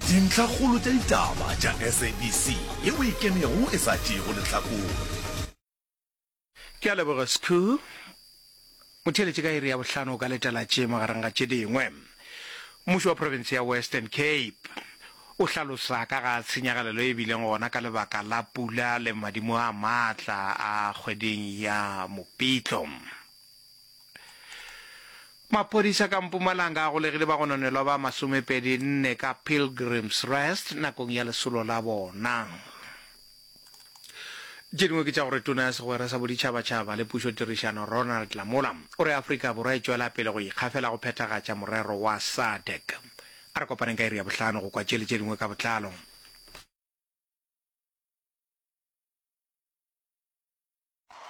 Dintlhakgolo tša ditaba tša SABC ye o e kenego e sa tšeego lehlakore. Ke a leboga Skhoo. O theeletše ka iri ya bohlano o ka letela tše magareng ga tše dingwe. Mmušo wa profense ya Western Cape o hlalosa ka ga tshenyagalelo e bileng gona ka lebaka la pula le madimo a maatla a kgweding ya Mopitlo. Maphodisa ka Mpumalanga a golegile bagononelwa ba masomepedi nne ka Pilgrims Rest nakong ya lesolo la bona. Tše dingwe ke tša gore tona ya segwera sa boditšhabatšhaba le pušotirišano Ronald Lamola o re Afrika Borwa e tšwela pele go ikgafela go phethagatša morero wa SADC. A re kopaneng ka iri ya bohlano go kwa tše le tše dingwe ka botlalo.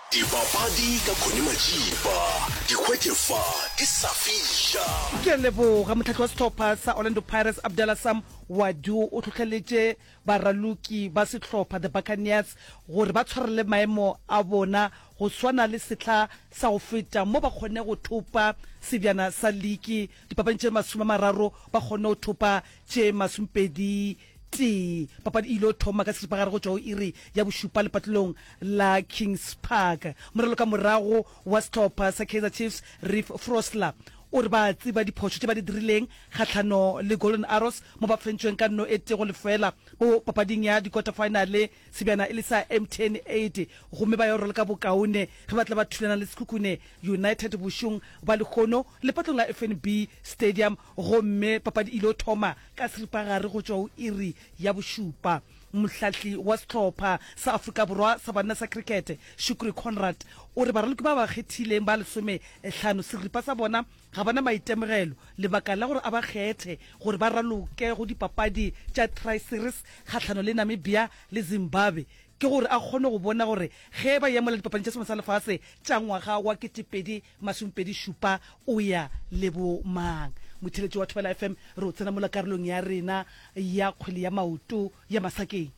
Dibapadi ka Connie Majiba, Dikgwete fa di sa fiša. Ke a leboga. Mohlahli wa sehlopha sa Orlando Pirates, Abdallah Sam Wadu o hlohleletše baraloki ba sehlopha The Buccaneers gore ba tshwarele maemo a bona go swana le sehla sa go feta mo ba kgonne go thopa sebjana sa liki dipapadi tše masome a mararo ba kgonne go thopa tše masomepedi Tee. Papadi e il'o thoma ka seripagare go tšwa go iri ya bošupa lepatlelong la Kings Park. Morelo ka morago wa sehlopha sa Kaizer Chiefs, Reeve Frosler, o re ba a tseba diphošo tše ba di dirileng kgahlano le Golden Arrows mo ba fentšweng ka nno e tee go lefela mo papading ya dikota-faenale sebjana e le sa Mtn 80 gomme ba yo rwala ka bokaone ge ba tla ba thulana le Sekhukhune United bošong bja lehono lepatlong la FNB Stadium Gomme papadi e il'o thoma ka seripagare go tšwa go iri ya bošupa. Mohlahli wa sehlopha sa Afrika Borwa sa banna sa krikete, Shukri Conrad, o re baraloki ba ba kgethileng ba lesome hlano seripa sa bona ga ba na maitemogelo lebaka la gore a ba kgethe gore ba raloke go dipapadi tša Tri-Series kgahlano le Namibia le Zimbabwe ke gore a kgone go bona gore ge ba yemela dipapading tša selemo sa lefase tša ngwaga wa 2000 Masomepedi šupa o ya le bo mang? Motheletši wa Thobela FM re o tsena mola karolong ya rena ya kgwele ya maoto ya Masakeng.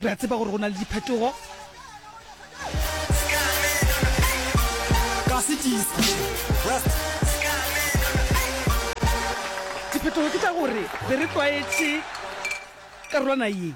Re a tseba gore go na le diphetogo. Ka setiisa, West. Diphetogo ke tša gore be re tlwaetše karolwana ye.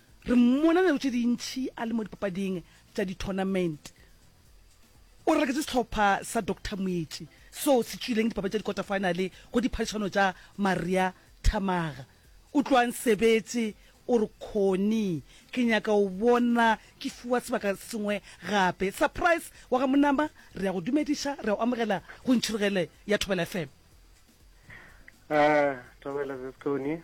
Re mmona nako tše dintši a le mo dipapading tša di-tournament. O raketše sehlopha sa Doctor Moetši seo se tšwileng dipapadi tša dikota-finale go diphadišano tša Maria Thamaga. O tloga a nsebetše, o re, Connie, ke nyaka go bona ke fiwa sebaka se sengwe gape. Surprise wa ga Monama, re a go dumediša, re a go amogela go Ntšhirogele ya Thobela FM. Thobela, Sis Connie.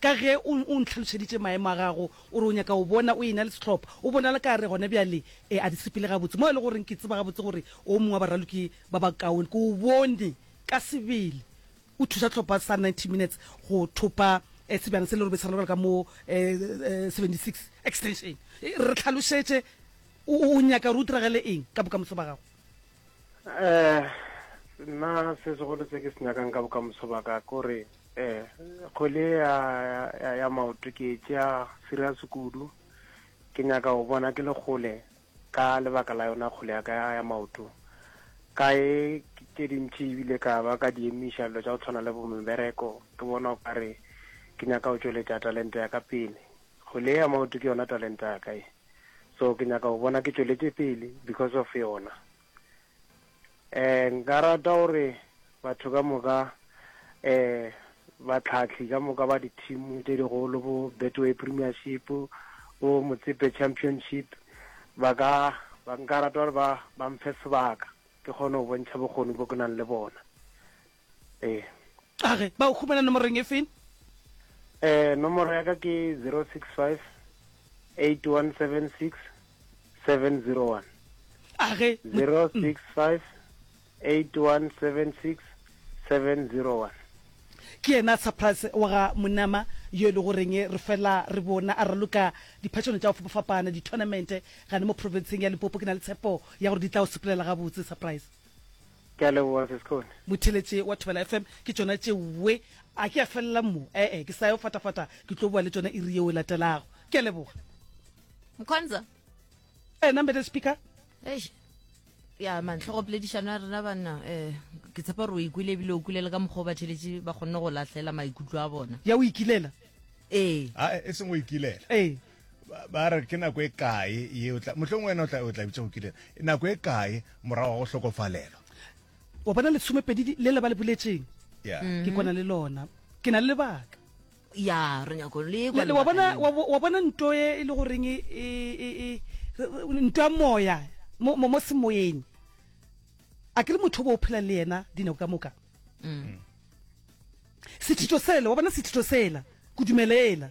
Ka ge o, o ntlhalošeditše maemo a gago, o re o nyaka go bona o e-na le sehlopha. O bonala ka gare gona bjale e, a di sepele gabotse, mo e lego goreng ke tseba gabotse gore o mongwe wa baraloki ba bakaone. Ke o bone ka sebele o thuša sehlopha sa Ninety Minutes go thopa eh, sebjana se le robedi sa go lebala ka mo eh, eh, 76 Extension. Eh, re tlhalošetše, o, o nyaka gore o diragale eng ka bokamoso ba gago? Eh, nna se segolo se ke se nyakang ka bokamoso ba ka ke gore Ee, kgole ya, ya, ya maoto ke tšea serious kudu ke nyaka go bona ke le kgole ka lebaka la yona kgole ya ka ya maoto ka e tše dintši ebile ka ba ka di emiša dilo tša go tshwana le bomebereko ke bona o kare ke nyaka go tšweletša talente ya ka pele kgole ya maoto ke yona talente ya ka e so ke nyaka go bona ke tšweletše pele because of yona Eh, nka rata gore batho ka moka, eh, batlhahli ka moka ba di-team tše digolo, bo Betway Premiership, bo Motsepe Championship, ba ka, ba nka rata gore ba, ba mphe sebaka, ke kgone go bontšha bokgoni bo ke nang le bona. Ee. A re, ba go humana nomorong e feng? Ee, nomoro ya ka ke 065 8176 701. A re, mo- 065 8176 701. ke yena surprise wa ga monama yo e le goreng re fela re bona a raloka diphatšono tša go fapafapana di-tournament gane mo provinceng ya lipopo ke na le tshepo ya gore di tla o sepelela gabotse surprise Ke a leboga se Sekgone. Motheletše wa Thobela FM ke tšona tšeoe. A ke a felela mo? E-e, ke sa yo fatafata, ke tlo boa le tšona iri yeo e latelago. Ke a leboga. Mkhonza. Wena Madam Speaker. Eish. ya mantlhogo poledišano ya rena banna um ke tshepa gore o ikwile ebile o kwile le ka mokgwa o batheletše ba kgonne go lahlela maikutlo a bona ya o ikilela ee a e seng o ikilela ee ba re ke nako e kae ye o tla mohlong wena o tla o tla bitsa go kile e nako e kae morago go hlokofalelwa wa bona le tshomepedi le le ba le boletseng yeah mm-hmm. ke kona le lona ke na le lebaka ya re nyako le kwa wa bona wa bona nto e, e le goreng e, e, e nto ya moya mo mo mo semoyeng a ke le motho bo o phela le yena dinako ka moka mm. sethito sela wa bona sethito sela kudumelela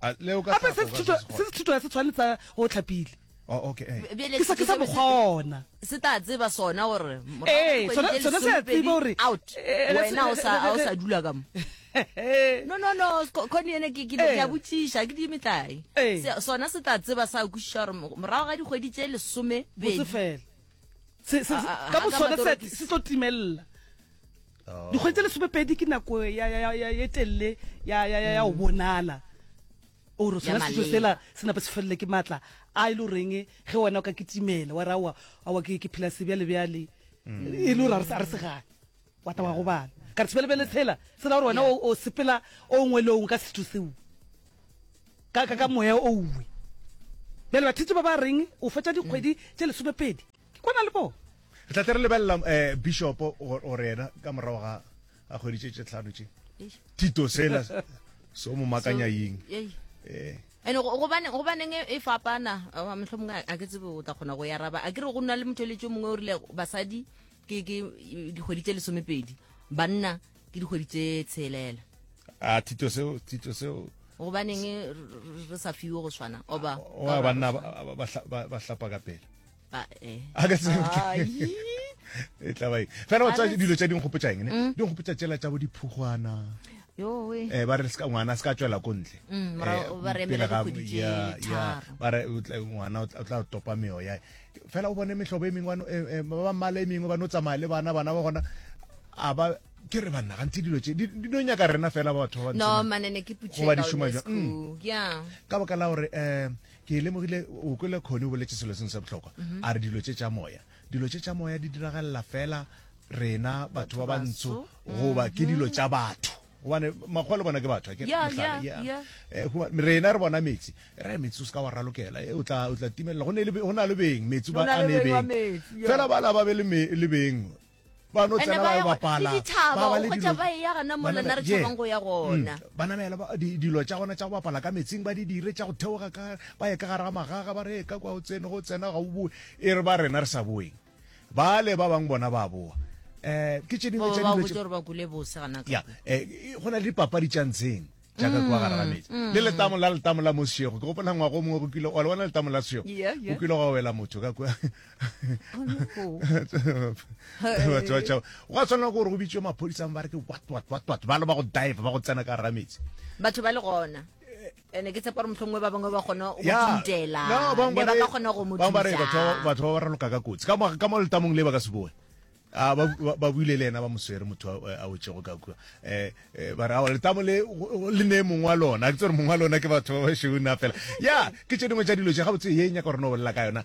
gape se se thutwa se tshwanetsa go tlhapile oh, okay, hey. ke sa ke sa bokgona se tla tseba sona gore ee sona sona se a tseba gore out wena o sa o sa dula ka mo no no no khone ene ke ke ya botšiša ke di metlae sona se tla tseba sa kwišiša gore morago ga dikgwedi tše lesome bedi fela se se ka bosona se se tlo timelela Dikgwedi tse lesomepedi ke nako e telele ya go mm. bonala ore sona seso sela se napa se felele ke maatla a e le goreng ge wena o ka ketimela wa rawa awa ke phela sebjale bjale mm. e le gore a re segane wa ta wa go bana ka re sebelebele tshela sela gore wena o sepela o ngwe le o ngwe ka setho seo ka moya o uwe bjale bathetse ba ba reng o fetsa dikgwedi mm. tse lesomepedi ke kwana le bo re tla tere lebelela um eh, bishopo gore ena ka morago ga a kgweditše tše tlhano tše tito sela so mo makanya ying eh ene gobane gobaneng e, e fapana motlho mongwe a ke tsebe o tla kgona go ya raba a ke re go nna le motho eletso mongwe o rile basadi ke dikgwedi tse lesomepedi banna ke dikgwedi tse tshelela a thito seo thito seo gobaneng re sa fiwe go swana oba wa banna ba hlapa ka pele ba eh a ka se e tla bai fela o tsa dilo tsa ding gopotsa eng ne mm. ding gopotsa tsela tsa bo diphugwana eh ba re se ka ngwana se ka tswela ko ntle mm, eh, ba re emela dikgwedi tse tharo ba re ngwana o tla topa meoya Fela o bone mehlobo e mengwe ba no- eh, eh, ba ba mmala e mengwe ba no tsamaya le bana bana ba gona a ba ke re banna gantsi dilo tše di di no nyaka rena fela ba batho ba no bantsho mane ne ke putše Goba di šoma jwang? Mm. ya ka baka la gore um ke lemogile o kwele kgone o boletse selo sengwe sa bohlokwa Mhm. a re dilo tše tša moya dilo tše tša moya di diragalela fela rena batho ba bantsho goba ke dilo tša batho gobane makgowa le bona ke batho eh, rena re bona metsi re metsi o se ka wa ralokela eh, o tla timelela go na le beng metsi ba a ne beng fela ba la ba be le beng ba no tsena ba bapala ba ba le dilo ba ya gana mo lena re tshabang go ya gona mm. ba namela ba dilo tsa gona tsa go bapala ka metsing ba di dire tsa go theoga ka ba ya ka gare ga magaga ba re ka kwa o tsene go tsena ga o boe e re ba rena re sa boeng bale ba bang bona ba boa um ke tše dingwe tša dilo tše gore ba kule bose gana ya eh, go na le dipapadi tša ntsheng jaaka kwa mm, gara metsi mm. le letamo la letamo la mosego ke gopola ngwago o mongwe go kile wa le bona letamo la sego go kile gwa wela motho ka kwa batho ba tšhaba gwa tshwanela gore go bitswe maphodisang ba re ke watwatwatwat ba le ba go dive ba go tsena ka gara metsi batho ba le gona ene ke tshepa gore mohlongwe ba bangwe ba kgona go tintela ne ba ka kgona go mo thusa batho ba ba raloka ka kotsi ka ka mo letamong le ba ka se boe a ah, ba buile le ena ba moswere motho a wetsego ka kua um ba re ao letamo le le ne mongwe wa lona ke tsere mongwe wa lona ke batho ba ba šona fela ya ke tše dingwe tša dilo tše gabotse ye nyaka gore no bolela ka yona